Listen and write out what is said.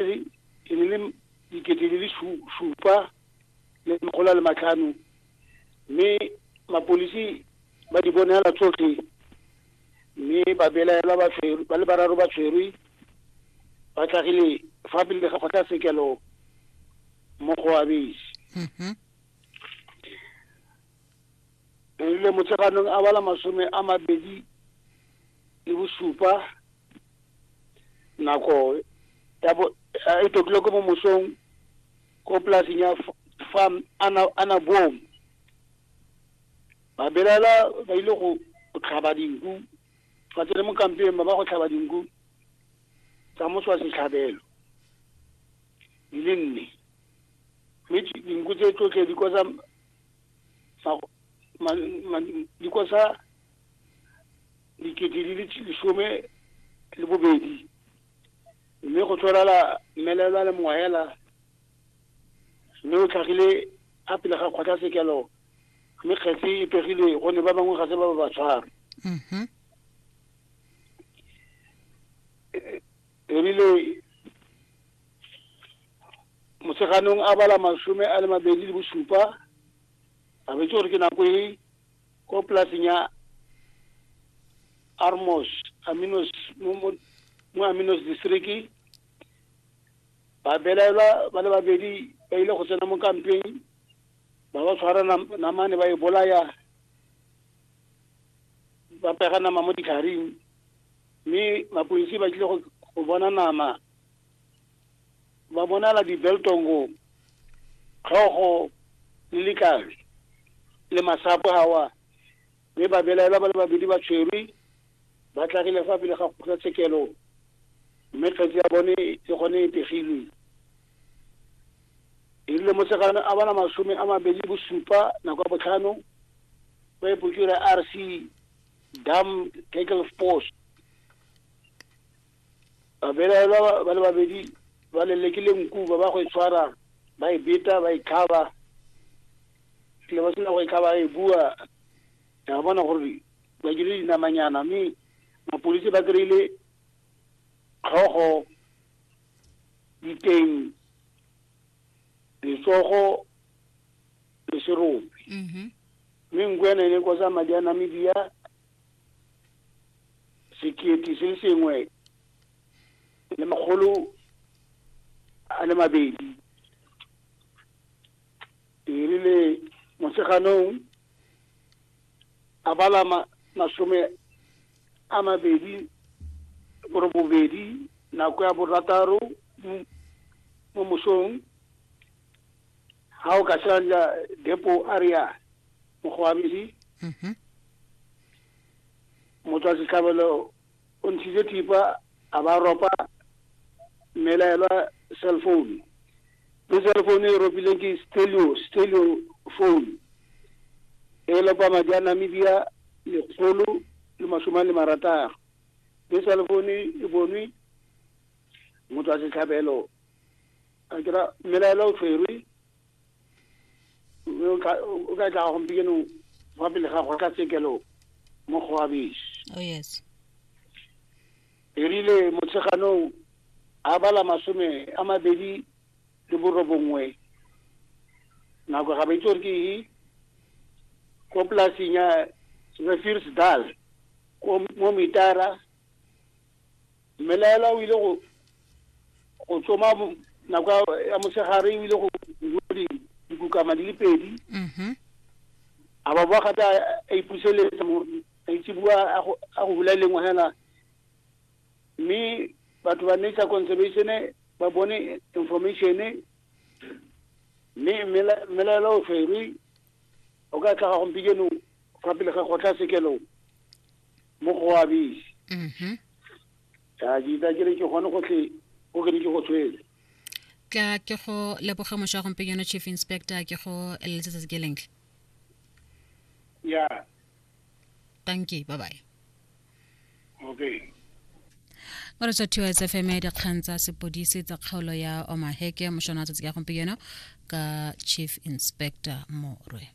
e ne le dikete di le supa le makgolo a le matlhano mme mapolisi ba di bonela tsotlhe mme ba belaelwa ba tshwerwe ba le bararo ba tshwerwe ba tlhagile fa pele ga kgotlatshekelo mo go abese mm-hmm. le motseganong a bala masome a mabedi le bosupa nako ya bo e tokile ko mo mosong ko polasing ya farm ana ana boom ba belela ba ile go tlhaba dinku ba tsene mo kampeng ba ba go tlhaba dinku tsa moswa setlhabelo di le nne mme dinku tse tsotlhe di kosa di kosa dikete di le lesome le bobedi mme go tlholala mmelelwa le moela mme o tlhagile a pele ga kgotlatshekelo mme kgetse e pegile gonne ba bangwe ga se ba ba ba tshware mhm. ebile motsheganong a bala masome a le mabedi le bosupa a betse gore ke nako e ko polaseng ya armos aminos mo mo- mo aminos distriki ba belaelwa ba le babedi ba ile go tsena mo kampeng ba ba tshwara nam- namane ba e bolaya ba pega nama mo ditlharing mme mapodisi ba tlile go go bona nama ba bonala dibeltongo tlhogo le likabe le masapo gawa mme ba belaela ba le babedi ba tshwerwe ba tlagile fa pele ga kgotlatshekelo mme kgetsi ya bone e gone e pegilwe e rile mosegano a bana masome a mabedi bosupa nako ya botlhano ba epokira r c dam tackle post Babelaelwa ba le babedi ba lelekile nku ba ba go e tshwara ba e beta ba e tlhaba tle ba sena go e tlhaba e bua ya bona gore ba dire dinamanyana mme mapodisi ba kry-ile tlhogo diteng letsogo le serope mm-hmm. mme nku ene e ne e kosa madi a namedia sekete se sengwe le makgolo a le mabedi e rile motsheganong a bala masome a mabedi gore bobedi nako ya borataro mo mosong ga o ka sanja depo a re yana mokgwabedi mhm. motswa setlhabelo o ntshitse thipa a ba ropa mmelaelwa cell phone le cell phone e ropileng ke stelio stelio phone e lopa madi a namibia lekgolo le masome a le marataro le cell phone e bonwe motswa setlhabelo a kira mmelaelwa o tshwerwe mme o tla o ka tla gompieno fa pele ga kgotlatshekelo mo kgoabesi oh yes erile motsheganong a bala masome a mabedi le borobongwe nako ga ba itse gore ke e ko polasing ya refirsdal mo mitara mmelaelwa o ile go go tsoma nako ya mosegare o ile go bua dikukama di le pedi mm-hmm. a ba boa gape a ipuseletsa a itse bua a go bula e lengwe fela mme batho ba nature conservation ba bone information mme mmelaela o tshwerwe o ka tlhaga gompikeno fa pele ga kgotlha sekelong mo go a bese mhm ya ke itsa ke re ke gone go tle o ke ne ke go tshwele tla ke go leboge moša wa gompenyano chief inspector ke go eleletsetse ke lentle ya tanki bye bye okay o re tsothiwa tsfm ya dikgang tsa sepodisi tsa kgaolo ya omaheke mošwana wa tsatsi ka gompieno ka chief inspector morwe